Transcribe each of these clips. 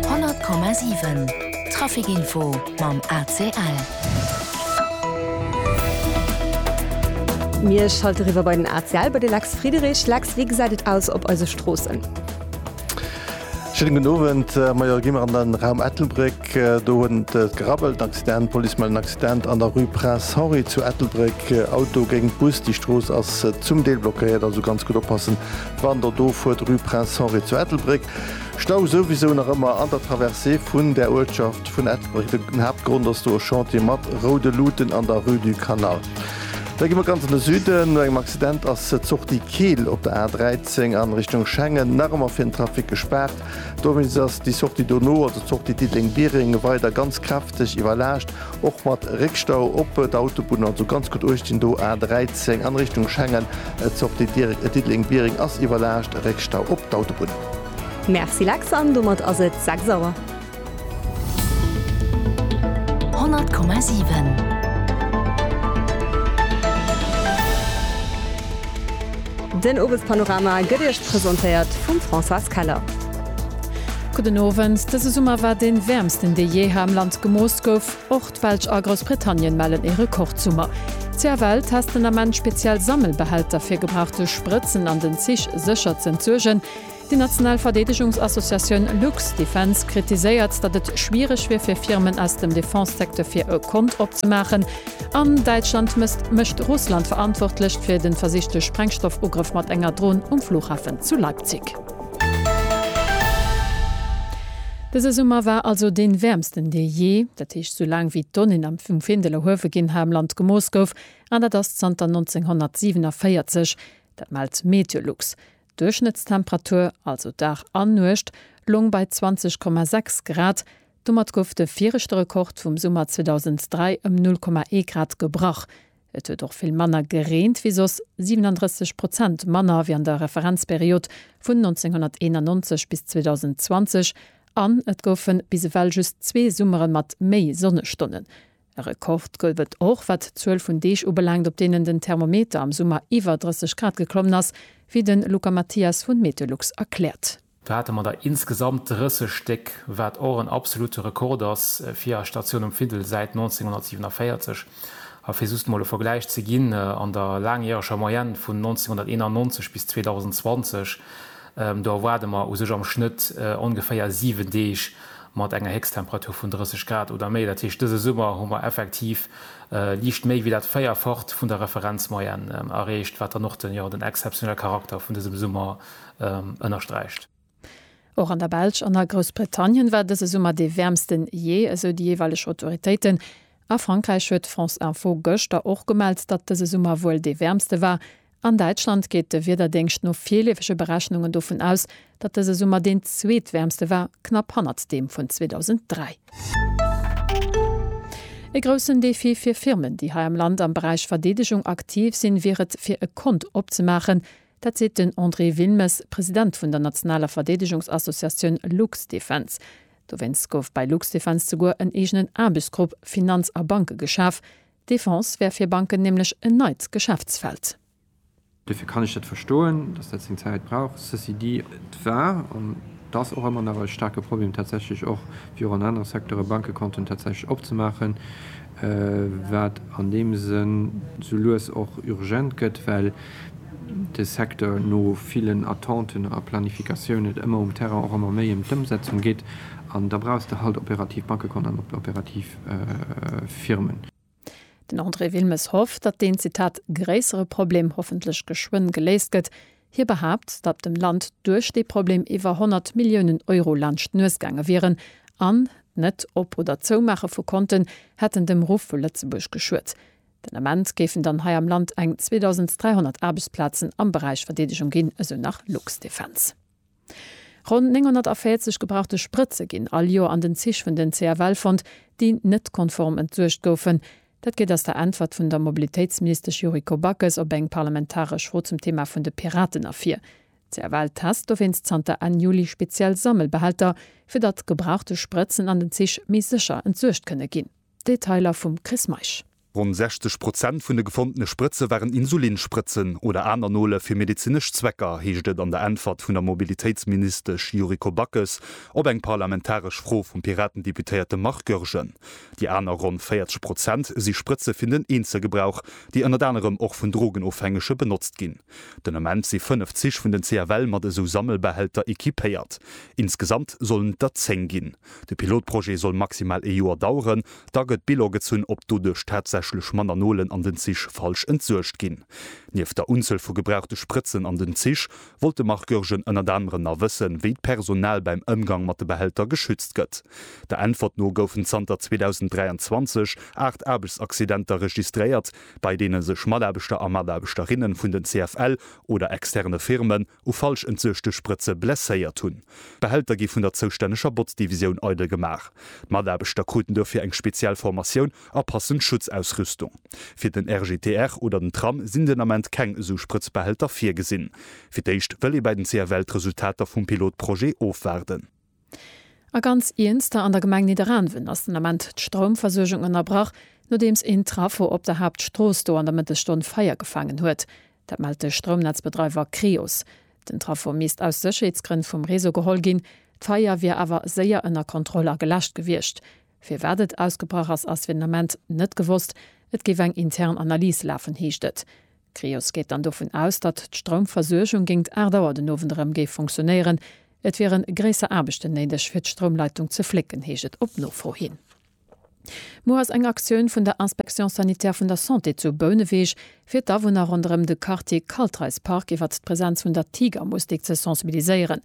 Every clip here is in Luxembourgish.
100,7 Trafic Info mam ACL. Mir schalte riwwer bei den ACL bei de Lex Friedrich. Lex, wéi gesäit et aus op eise Stroossen? Schëllen den Owend äh, meier gimmer an den Raum Ettelbréck. Äh, do hunn et äh, gerabbelt, Accident, Police melden Accident an der Rue Prince Henri zu Ettelbréck. Auto géint Bus, déi Strooss ass zum Deel blockéiert, also ganz gut oppassen, Wann der do fuert, rue Prince Henri zu Ettelbréck, Stau souwisou nach ëmmer an der Traversée vun der Uertschaft vun Ettelbréck. Den Haaptgrond ass do e Chantier mat roude Luuten an der rue du Canal. Da gi mer ganz an de Süden. No engem Accident ass d'Sortie Keel op der A 13 an Richtung Schengen nach ëmmer fir den Trafic gespaart. Dowéinst ass déi Sortie dono, also d'Sortie Diddeleng-Biereng, weider ganz kräfteg iwwerlaascht. Och mat Réckstau op der Autobunn, also ganz gutt uechtginn do, A13 an Richtung Schengen, d'Sortie direkt Diddeleng-Biereng ass iwwerlaascht, Réckstau op d'Autobunn. Merci Lex, an domat ass et 6 Auer. 100,7. Den Owespanorama gëtt Iech presentéiert vum Françoise Keller. Gudden Owend, Dëse Summer war dee wäermsten dee jee hei am Land gemooss gouf. Och d'Belsch a Groussbritannien mellen ee Rekordsummer. CFL test den Ament speziell Sammelbehälter fir gebrauchte Sprëtzen an den Zich sécher z'entsuergen. Déi national Verdeedegungsassociatioun Luxdefence kritiséiert, datt et schwiereg wier fir Firmen aus dem Defense-Secteur fir e Kont opzemaachen. An Däitschland mësst mécht Russland verantwortlech fir de versichte Sprengstoffugrëff mat enger Dron um Flughafen zu Leipzig. Dëse Summer war also dee wäermsten dee jee, dat heescht sou laang wéi d'Donnéen am vum Findel erhuewe ginn ha am Land gemooss gouf, an dat ass zanter 1947, dat mellt Meteolux. D'Duerchschnëttstemperatur, also Dag an Nuecht, loung bei 20,6 Grad. Domat gouf de viregte Rekord vum Summer 2003 ëm 0,1 Grad gebrach. Et huet och vill manner gereent wéi soss, 37 Prozent manner wéi an der Referenzperiod vun 1991 bis 2020, an et goufe bis ewell just zwee Summere mat méi Sonnestonnen. E Rekord gouf et och wat d'Zuel vun Deeg ubelaangt, op deenen den Thermometer am Summer iwwer 30 Grad geklommen ass, wéi de Luca Mathias vu Meteolux erkläert. Do hate mer der insgesamt 30 Stéck, wat och en absolute Rekord ass fir eis Statioun um Findel säit 1947. A fir just mol e Vergläich ze ginn, an der laangjäreger Moyenne vun 1991 bis 2020, do erwaarde mer u sech am Schnëtt ongeféier 7 Deeg mat enger Héchsttemperatur vun 30 Grad oder méi. Dat heescht, dëse Summer hu mer effektiv liicht méi wéi dat Véierfacht vun der Referenzmoyenne erreecht, wat dann och den exzeptionelle Charakter vun dësem Summer ënnersträicht. Och an der Belsch an a Groussbritannien war dëse Summer dee wäermsten jee, esou déi jeeweileg Autoritéiten. A Frankräich huet France Info gëschter och gemellt, datt dëse Summer wuel dee wäermste war. An Däitschland geet de Wiederdéngscht no virleefege Berechnungen dovun aus, datt dëse Summer deen zweetwäermste war, knapp hannert deem vun 2003. E groussen Defi fir Firmen, déi hei am Land am Beräich Verdeedegung aktiv sinn, wier et, fir e Kont opzemaachen. Dat seet den André Wilmes, President vun der nationaler Verdeedegungsassociatioun Luxdefense. Dowéinst gouf bei Luxdefense souguer en eegenen Aarbechtsgrupp Finanz a Banke geschaf. D'Defense wär fir Banken nämlech en neit Geschäftsfeld. Dofir kann ech dat verstoen, datt dat seng Zäit brauch. Ceci dit, et war an et ass och ëmmer nach e staarke Problem tatsächlech och, wéi och an anere Secteure, Bankekonten tatsächlech opzemaachen. wat an deem Sënn sou lues och urgent gëtt, well de Secteur no villen Attenten a Planificatioun et ëmmer um Terrain och ëmmer méi ëm d'Ëmsetzung geet, an da brauchs de halt operativ Bankekont an operativ Firmen. Den André Wilmes hofft, datt deen, Zitat, gréissere Problem hoffentlech geschwënn geléist gëtt, Hie behaapt, datt dem Land duerch dee Problem iwwer 100 Milliounen Euro laanscht d'Nues gaange wieren an d'Net Op oder Zoumaache vu Konten hätten dem Ruff vu Lëtzebuerg geschuet. Den Ament géifen dann hei am Land eng 2.300 Aarbechtsplazen am Beräich Verdeedegung ginn, esou nach Luxdefense. Ronn 940 gebrauchte Sprëtze ginn all Joer an den Zich vun den CFL fonnt, déi net konform entsuergt goufen. Dat geet aus der Äntwert vun der Mobilitéitsministesch Yuriko Backes op eng parlamentaresch Fro zum Thema vun de Piraten ervir. D'CFL test dowéinst zanter Enn Juli speziell Sammelbehälter, fir datt gebrauchte Sprëtzen an den Zich méi sécher entsuergt kënne ginn. Detailer vum Chris Meisch. Ronn 60 Prozent vun de gefondene Sprëtze waren Insulinsprëtzen oder aner Nole fir medezinesch Zwecker, heescht et an der Äntwert vun der Mobilitéitsministesch Yuriko Backes op eng parlamentaresch Fro vum Piraten-Deputéierte Marc Goergen. Déi aner ronn 40 Prozent si Sprëtze fir den Eenzelgebrauch, déi ënnert anerem och vun Drogenofhängege benotzt ginn. Den Ament si fënnef Zich vun den CFL mat esou Sammelbehälter equipéiert. Insgesamt sollen et der zéng ginn. De Pilotprojet soll maximal ee Joer daueren. Da gëtt Bilan gezunn, ob doduerch tatsächlech manner Nolen an den Zich falsch entsuergt ginn. Nieft der Unzuel vu gebrauchte Sprëtzen an den Zich, wollt de Marc Goergen ënnert anerem nach wëssen, wéi d'Personal beim Ëmgang mat de Behälter geschützt gëtt. Der Äntwert no goufen zanter 2023 aacht Aarbechtsaccidenter registréiert, bei deene sech Mataarbechter a Mataarbechterinnen vun den CFL oder externe Firmen, u falsch entsuechte Sprëtze blesséiert hunn. D'Behälter gi vun der zoustänneger Botzdivisioun eidel gemaach. D'Mataarbechter kruten dofir eng speziell Formatioun a passend Schutzausrüstung. Fir den RGTR oder den Tram sinn den Ament keng esou Sprëtzbehälter virgesinn. Fir d'éischt wëll ee bei den CFL d'Resultater vum Pilotprojet ofwaarden. A ganz Iernster, an der Gemeng Nidderaanwen ass den Ament d'Stroumversuergung ënnerbrach, nodeems een Traffo op der Haaptstrooss do an der Mëttesstonn Feier gefaangen huet. Dat mellt de Stroumnetzbedreiwer Creos. Den Traffo misst aus Sécherheetsgrënn vum Réseau geholl ginn. D'Feier wier awer séier ënner Kontroll a geläscht gewiescht. Firwat et ausgebrach ass, ass fir den Ament net gewosst. Et géif eng intern Analys lafen, heescht et. D'Cryos geet dann dovun aus, datt d'Stroumversuergung géingt 8 Auer den Owend erëm géif funktionéieren. Et wiere gréisser Aarbechten néideg, fir d'Stroumleitung ze flécken, heescht et op Nofro hin. Muer ass eng Aktioun vun der Inspection sanitaire vun der Santé zu Bouneweg, fir d'Awunner ronderëm de Quartier Kaltreispark iwwert d'Presenz vun der Tigermustik ze sensibiliséieren.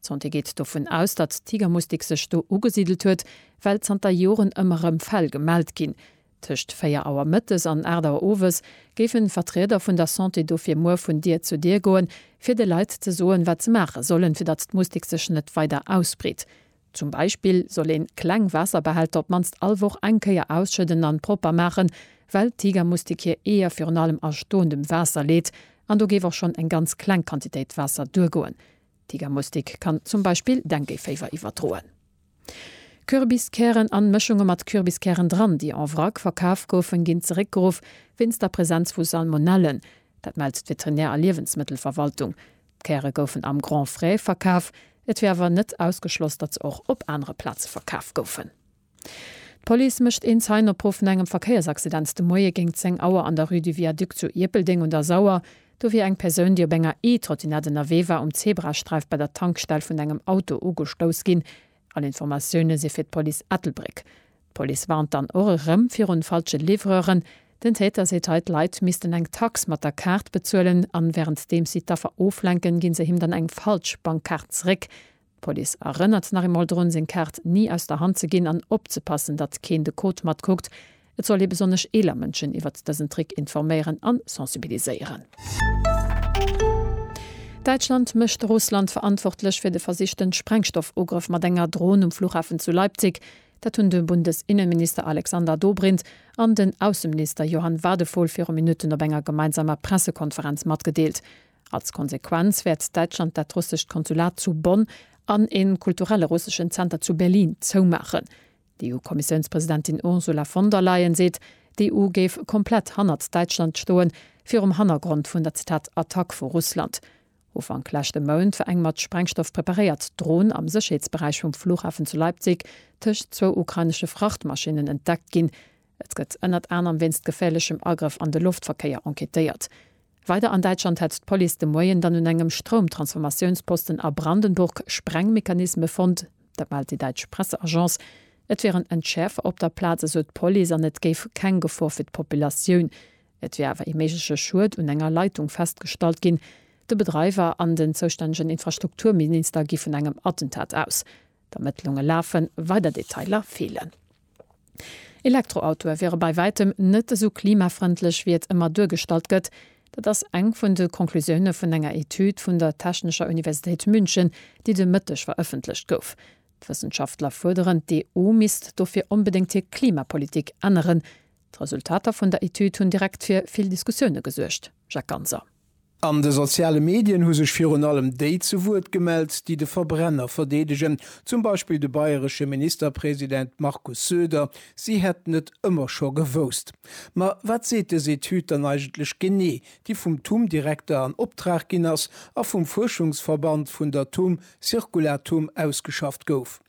D'Santé geet dovun aus, datt d'Tigermustik sech do ugesidelt huet, well zanter Joren ëmmer erëm Fäll gemellt ginn. Tëscht 4 Auer mëttes an 8 Auer owes géifen Vertrieder vun der Santé dofir muer vun Dier zu Dier goen, fir de Leit ze soen, wat se maache sollen, fir datt d'Mustik sech net weider ausbreet. Zum Beispill soll een kleng Waasserbehälter op d'mannst all Woch eng Kéier ausschëdden an propper maachen, well d'Tigermustik hir Eeër virun allem a stoendem Waasser leet an do géif och schonn eng ganz kleng Quantitéit Waasser duergoen. D'Tigermustik kann zum Beispill Dengueféiwer iwwerdroen. Kürbiskären an Mëschunge mat Kürbiskären dran, déi en vrac verkaf goufen, ginn zeréckgeruff wéinst der Präsenz vu Salmonellen. Dat mellt d'Veterinär a Liewensmëttelverwaltung. D'Käre goufen am Grand Frais verkaf, et wier awer net ausgeschloss, datt se och op anere Plaze verkaf goufen. D'Police mécht een Zeien-Opruff no engem Verkéiersaccident de Moie géint 10 Auer an der Rue du Viaduc zu Ierpeldeng un der Sauer. Do wier eng Persoun, déi op enger E-Trottinett ënnerwee war, um Zebrasträif bei der Tankstell vun engem Auto ugestouss ginn. All Informatioune si fir d'Police Ettelbréck. D'Police warnt dann och erëm virun falsche Livreuren. Den Täter seet hei, d'Leit missten eng Tax mat der Kaart bezuelen an wärenddeems si d'Affer oflenken, ginn se him dann eng falsch Bankkaart zeréck. D'Police erënnert nach eemol drun, seng Kaart ni aus der Hand ze ginn an opzepassen, datt keen de Code matkuckt. Et soll ee besonnesch eeler Mënschen iwwert dësen Trick informéieren an sensibiliséieren. Däitschland mécht Russland verantwortlech fir de versichten Sprengstoffugrëff mat enger Dron um Flughafen zu Leipzig. Dat hunn de Bundes-Innenminister Alexander Dobrindt an den Ausseminister Johann Wadephol viru Minutten op enger gemeinsamer Pressekonferenz matgedeelt. Als Konsequenz wäert Däitschland dat russescht Konsulat zu Bonn an ee kulturelle russeschen Zenter zu Berlin zoumaachen. D'EU-Kommissiounspresidentin Ursula von der Leyen seet, d'EU géif komplett hannert Däitschland stoen, virum Hannergrond vun der Zitat Attack vu Russland. Ufank leschte Mount war eng mat Sprengstoff preparéiert Dron am Sécherheetsberäich vum Flughafen zu Leipzig tëscht zwou ukrainesche Frachtmaschinnen entdeckt ginn, Et gëtt ënnert anerem wéinst geféierlechem Agrëff an de Loftverkéier enquêtéiert. Weider an Däitschland hätt d'Police de Moien dann un engem Stroumtransformatiounsposten a Brandenburg Sprengmechanisme fonnt. Dat mellt déi däitsch Presseagence. Et wieren Entschäerfer op der Plaz, esou d'Police an et géif keng Gefor fir d'Populatioun. Et wier awer ee méigleche Schued un enger Leitung festgestallt ginn. De Bedreiwer an den zoustännegen Infrastrukturminister gi vun engem Attentat aus. D'Ermëttlunge lafen, weider Detailer feelen. Elektroautoe wiere bei wäitem net esou klimafrëndlech, wéi et ëmmer duergestallt gëtt. Dat ass eng vun de Conclusioune vun enger Etüd vun der Technescher Universitéit München, déi de Mëtteg verëffentlecht gouf. D'Wëssenschaftler fuerderen, d'EU misst dofir onbedéngt hir Klimapolitik änneren. D'Resultater vun der Etüd hunn direkt fir vill Diskussioune gesuergt, Jacques Ganser. An de soziale Medien hu sech virun allem déi zu Wuert gemellt, déi de Verbrenner verdeedegen, zum Beispill de bayresche Ministerpresident Markus Söder, si hätten et ëmmer scho gewousst. Ma wat seet dës Etüd dann eigentlech genee, déi vum TUM-Direkter an Optrag ginn ass a vum Fuerschungsverband vun der TUM Circulatum ausgeschafft gouf?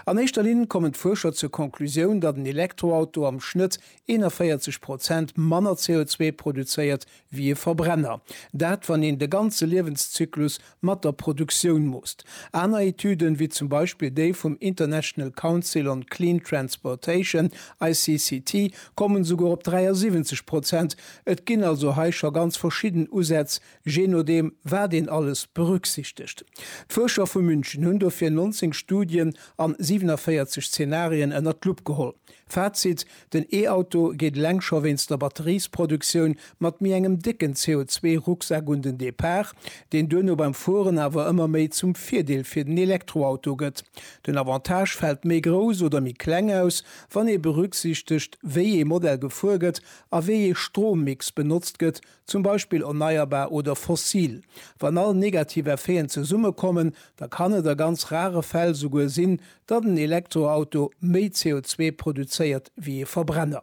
An éischter Linn kommen d'Fuerscher zur Konklusioun, datt en Elektroauto am Schnëtt 41 Prozent manner CO2 produzéiert wéi e Verbrenner. Dat, wann een de ganze Liewenszyklus mat der Produktioun moosst. Aner Etüden, wéi zum Beispill déi vum International Council on Clean Transportation, ICCT, kommen esouguer op 73 Prozent. Et ginn also hei scho ganz verschidden Usätz, je nodeem wat een alles berücksichtegt. D'Fuerscher vu München hunn dofir 19 Studien an 47 Zenarien ënnert d'Lupp geholl. Fazit, Den E-Auto geet eleng scho wéinst der Batteriesproduktioun mat méi engem décken CO2-Rucksak un den Depart, deen duerno beim Fueren awer ëmmer méi zum Virdeel fir den Elektroauto gëtt. Den Avantage fält méi grouss oder méi kleng aus, wann ee berücksichtegt, wéi ee Modell gefuer gëtt a wéi ee Strommix benotzt gëtt, zum Beispill erneierbar oder fossil. Wann all negativ Effeten zesummekommen, da kann et a ganz rare Fäll souguer sinn, datt en Elektroauto méi CO2 produzéiert wéi ee Verbrenner.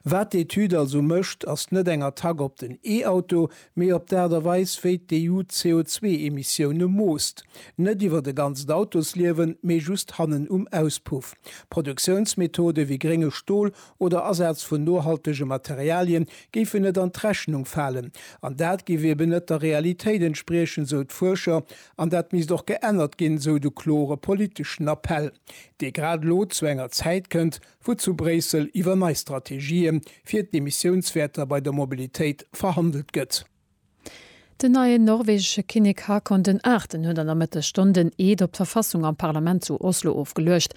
Wat d'Etüd also mécht, ass net eng Attack op den E-Auto, mee op d'Aart a Weis, wéi d'EU d'CO2-Emissioune moosst. Net iwwert e ganzt Autosliewen, mee just hannen um Auspuff. Produktiounsmethode wéi grénge Stol oder Asaz vun nohaltege Materialien géifen net an d'Rechnung falen. An dat géif eben net der Realitéit entspriechen, sou d'Fuerscher, an dat misst och geännert ginn, sou de klore politeschen Appell, dee grad elo zu enger Zäit kënnt, wou zu Bréissel iwwer nei Strategië fir d'Emissiounswäerter bei der Mobilitéit verhandelt gëtt. Den neien norwegesche Kinnek Haakon den Aachten huet an der Mëttesstonn den Eed op d'Verfassung am Parlament zu Oslo ofgeluecht.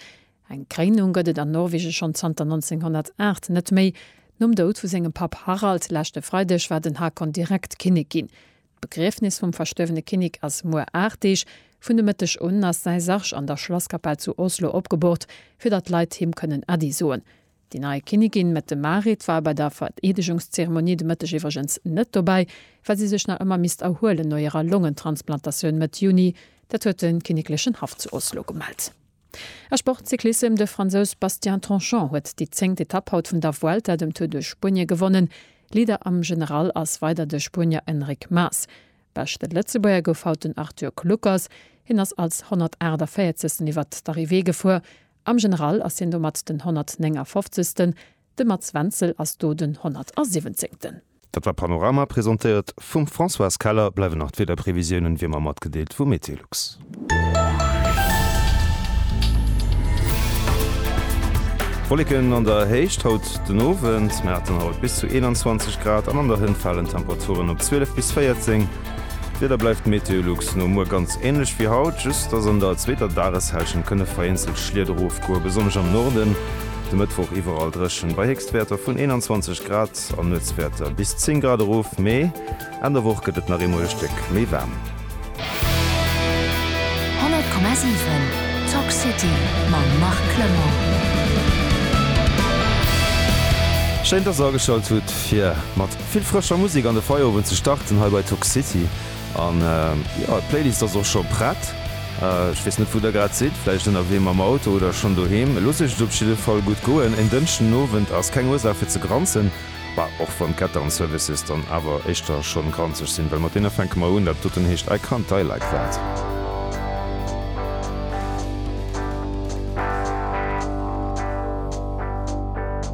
Eng Kréinung gëtt et an Norwegen schonn zanter 1908 net méi. Nom Doud vu sengem Papp Harald leschte Freideg war den Haakon direkt Kinnek ginn. D'Begriefnis vum verstuerwene Kinnek ass muer 8 Deeg. Vun de Mëtteg un ass säi Sarg an der Schlasskapell zu Oslo opgebort, fir datt d'Leit him kënnen Äddi soen. Déi nei Kinnigin Mette Marit war bei der Vereedegungszeremonie de Mëtteg iwwregens net dobäi, well si sech nach ëmmer misst erhuelen no hirer Longentransplantatioun Mëtt Juni. Dat huet de kinneklechen Haff zu Oslo gemellt. A Sportcyclissem, De Fransous Bastien Tanchon huet déi zéngt Etapp haut vun der Vuelta, dem Tour de Spuenie, gewonnen. Leader am General ass weider de Spuenier Enric Mas. Beschte Lëtzebuerger gouf haut den Arthur Kluckers. Hien ass als 148. iwwert d'Arrivée gefuer Am General ass hien domat den 159. De Mats Wenzel ass do den 170. Dat war Panorama, presentéiert vum Françoise Keller. Bleiwen nach d'Wiederprevisiounen wéi ëmmer matgedeelt vu Meteolux. Wolleken an der Héicht haut den Owend, mä haten haut bis zu 21 Grad an an der Hënt falen d'Temperaturen op 12 bis 14. D'Wieder bleift MeteoLux no muer ganz änlech wéi haut, just dass an der zweeter Dageshälschent kënne vereenzelt Schliet erofgoen, besonnesch am Norden. De Mëttwoch iwwerall dréchen bei Héchstwäerter vun 21 Grad an Nuetswäerter bis 10 Grad erof, mee Enn der Woch gëtt et nach eemol e Stéck méi waarm. 100,7 Talk City mam Marc Clement. Schéin dass der ageschalt hutt fir mat. Vill frëscher Musek an de Feierowend ze starten hei bei Toxicity. An jo, d'Playlist ass och scho prett. Ech weess net wou der grad sidd, vläicht ënnerwee mam Auto oder schonn doheem. Loosst iech et op jidde Fall gutt goen. En Dënschdenowend ass keng Ursaach fir ze granzen, bah, och wann d'Ketter an d'Services dann awer éischter schonn granzeg sinn, well mat deene fänke mer un. Dat doten heescht I Can't Die Like That.